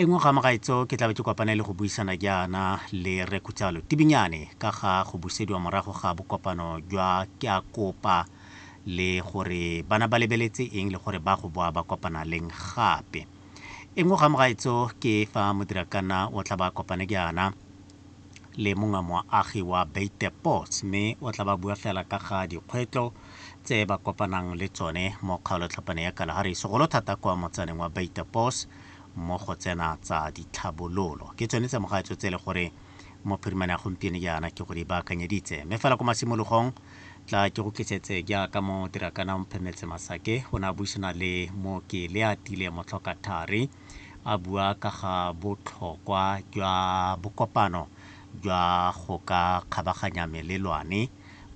E nngwe ga mogaetso ke tlabe ke kopane le go buisana jaana le Rre Khutsalo Tibinyane ka ga go busediwa morago ga bokopano jwa Ke a Kopa le gore bana ba lebeletse eng le gore ba go boa ba kopana leng gape. E nngwe ga mogaetso ke fa modirakanna o tla ba kopane jaana le mongwe moagi wa Beitepots mme o tla ba bua fela ka ga dikgwetlo tse ba kopanang le tsone mo kgaolotlhapane ya Kalahari segolo thata kwa motsaneng wa Beitepots mo go tsena tsa ditlhabololo ke tsone tsa mogaetso tse e le gore mophirimane ya gompieno jaana ke go di baakanyeditse mme fela ko masimologong tla ke go tlisetse jaaka mo dirakana o mphemetse masake o ne a buisana le mooki le a tile motlhoka thari a bua ka ga botlhokwa jwa bokopano jwa go ka kgabaganya melelwane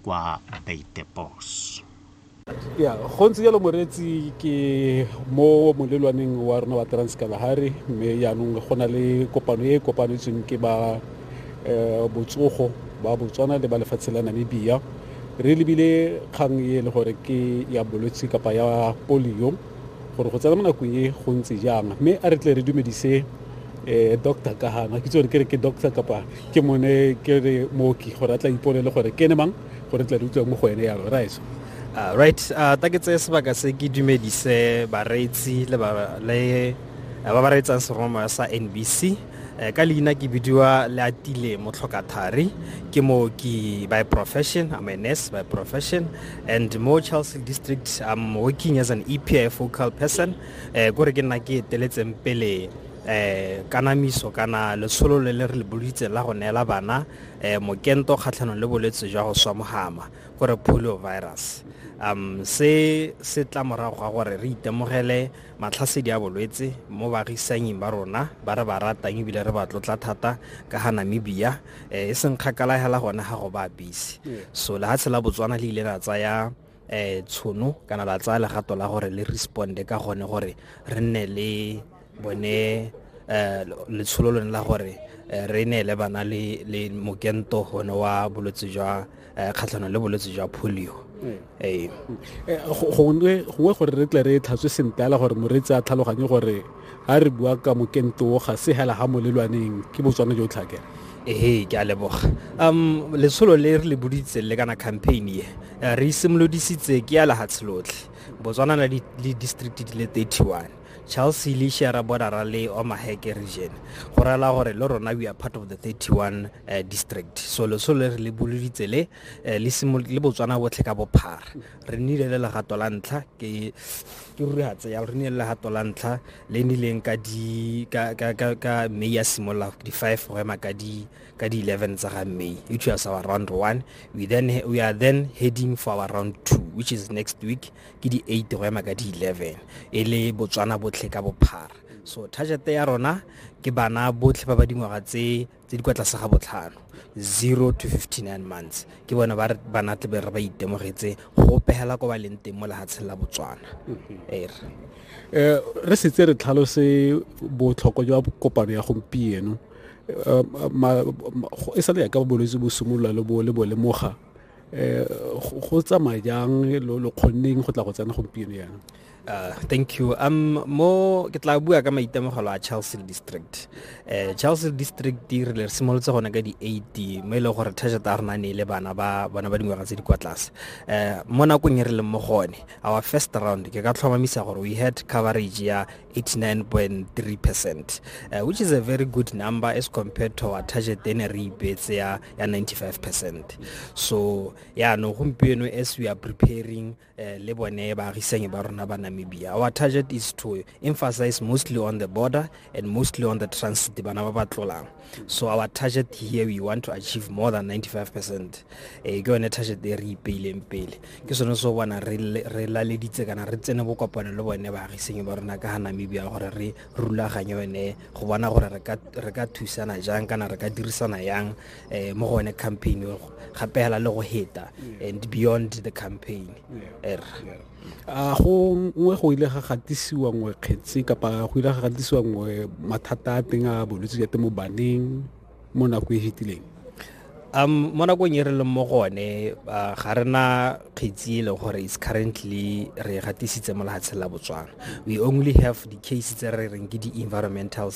kwa baitepos ya go ntse jalo moreetsi ke mo molelwaneng wa rona wa transkalahari mme jaanong go na le kopano e e kopanetsweng ke ba um botsogo ba botswana le ba lefatshe la namibia re lebile kgang e e le gore ke ya bolwetse kapa ya polio gore go tsena mo nakong e go ntse jang mme a re tle re dumedise um doctor kahana ke tsore ke re ke doctor kapa ke mone ke re mooki gore a tla ipolele gore ke ne mang go re tle re utlwe mo go ene yalo rice Uh, right uh, ta ke tseye sebaka se ke dumedise bareetsi le ba le uh, ba ba reetsang seroma sa nbc uh, ka leina ke bidiwa le atile motlhokathari ke mooki by profession i'm a nurse by profession and mo charles district i'm working as an epi focal person uh, kore ke nna ke eteletseng pele eh kanamiso kana letsholo le le re le bolitse la go neela bana eh, mokento kgatlhanong le bolwetse jwa go swa mohama gore polio virus um se se tla morago ga gore re itemogele matlhasedi a bolwetse mo baagisanyeng ba rona ba re ba ratang ebile re ba tlotla thata ka ga namibia eh, e seng kgakala hela gone ga go ba busy so lehatshe la botswana le ile la tsaya eh tshono kana la tsaya legato la gore le responde ka gone gore re nne le bone eh letsholo lone la gore eh, re neele bana le le mokento gone wa bolwetse jwa eh, kgatlhanong le bolwetse jwa polio mm. ee eh, gongwe gore re tle re tlhatswe sentle ala gore moreetsi a tlhaloganye gore ga re bua ka mokento ga se hela ga mo lelwaneng ke botswana jo tlhakela ee ke a leboga um letsholo le re le boditseng le kana campaign ye Eh, re simolodisitse ke ya lehatshe lotlhe botswana na le district di le 31 charles le share bordera le omaheke region go rela gore le rona we are part of the 31 uh, eh, district so leso le re le boloditse le eh, le botswana botlhe ka bophara re nnile le legato la ntlha ke ruri ga tseya re nnile le legato la ntlha le nnileng ka may ya simolola di-five go ema ka di ka di-11 tsa ga may which was our round one we, then, we are then heading for our round two which is next week ke di-8 go ema ka di-11 e le botswana botlhe ka bophara so target ya rona ke bana botlhe ba ba dingwaga tse tse di kwa tlase ga botlhano 0 to 59 months ke bona ba bana tle re ba itemogetse go pegela ko ba leng teng mo lehatsheng la botswana mm-hmm. er eh, re setse re tlhalose botlhokwa jwa kopano ya gompieno e sa le yaka bolwetse bo simolola le bo le bo lemoga um go tsamaya jang lo kgonneng go tla go tsena gompieno yana Uh, thank you um mo ke tla bua ka maitemogelo a Chelsea district uh, Chelsea district di re simolotse gone ka di 80 mo e leng gore thajata ya rona ne le bana ba bona ba dingwaga tse di kwa tlase uh, mo nakong e re leng mo gone our first round ke ka tlhomamisa gore we had coverage ya 89.3 percent uh, which is a very good number as compared to our target then re ipeetse ya 95 percent so ya no gompieno as we are preparing uh, le bone baagisanyi ba rona ba namibia our target is to emphasize mostly on the border and mostly on the transit bana ba ba tlolang so our target here we want to achieve more than 95 percent eh, ke yone target e re ipeileng pele ke sone so bona re laleditse kana re tsene bokopano le bone baagisenyi ba rona ka ga namibia gore re rulaganye yone go bona gore re ka thusana jang kana re ka dirisana yang um mo go one campaign gape fela le go heta mm. and beyond the campaign yeah. er yeah. a go nngwe go ile ga gatisiwa nngwe kgetsi kapa go ile ga gatisiwa nngwe mathata a teng a bolwetse jwa temo baneng mo nako e fetileng um mo nakong e re leng mo gone ga re na kgetsi e leng gore is currently re gatisitse mo lehatsheng la botswana we only have di-case tse re reng ke di-environmental